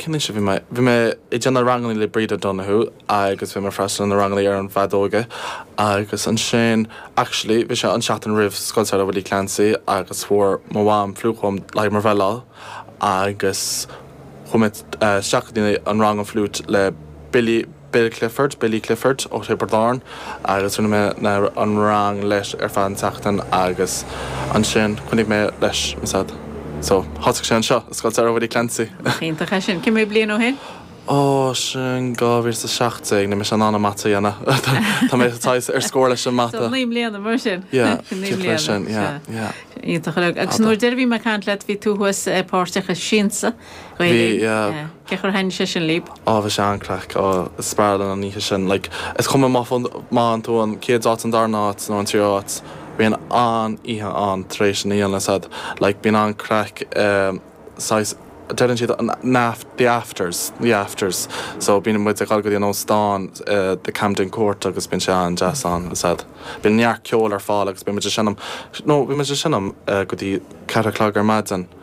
Cén aois a bhí mé? Bhí mé ag déanamh ranganna le Bríd O'Donoghue agus bhí mé ag freastal ar na ranganna ar an bhfeadóg agus ansin, actually, bhí sé an seachtain roimh Scoil Samhraidh Willie Clancy agus fuair mo mham fliúit dom le haghaidh mo bhreithlá agus chuaigh mé isteach go dtí an rang an fhliúit le Billie Bill Clifford, Billy Clifford, ó Thiobraid Árann agus rinne mé na an rang leis ar feadh an tseachtain agus ansin choinnigh mé leis ansan so thosaigh sé anseo i Scoil Samhraidh Willie Clancy. Nach iontach é sin. Cé mhéad bliain ó shin? Ó, sin 2017, níl mé in ann an mata a dhéanamh. Tá mé saghas ar scór leis an mata. So naoi mbliana mar sin. Yeah, naoi mbliana. Sin, yeah, yeah. Iontach. Agus nuair a bhí mé ag caint leat bhí tú thuas páirteach i Siansa. Gael Linn. Yeah. Cén chaoi a ndeachaigh sé sin libh? Á bhí sé an-craic. Á, is fearr liom an oíche sin. Like, is cuma má fhaigh, má fhaigheann tú an chéad áit, an darna áit nó an tríú áit, bíonn an-oíche ann tar éis an Siansa ansan. Like, bíonn an-craic i saghas, deireann siad an aft, the afters, the afters. So bíonn muid ag dul go dtí an óstán i the Camden Court agus bíonn sé an-deas ann ansan. Bíonn neart ceoil ar fáil agus beidh muid ag seinm, no, bhí muid ag seinm go dtí ceathair a chlog ar maidin.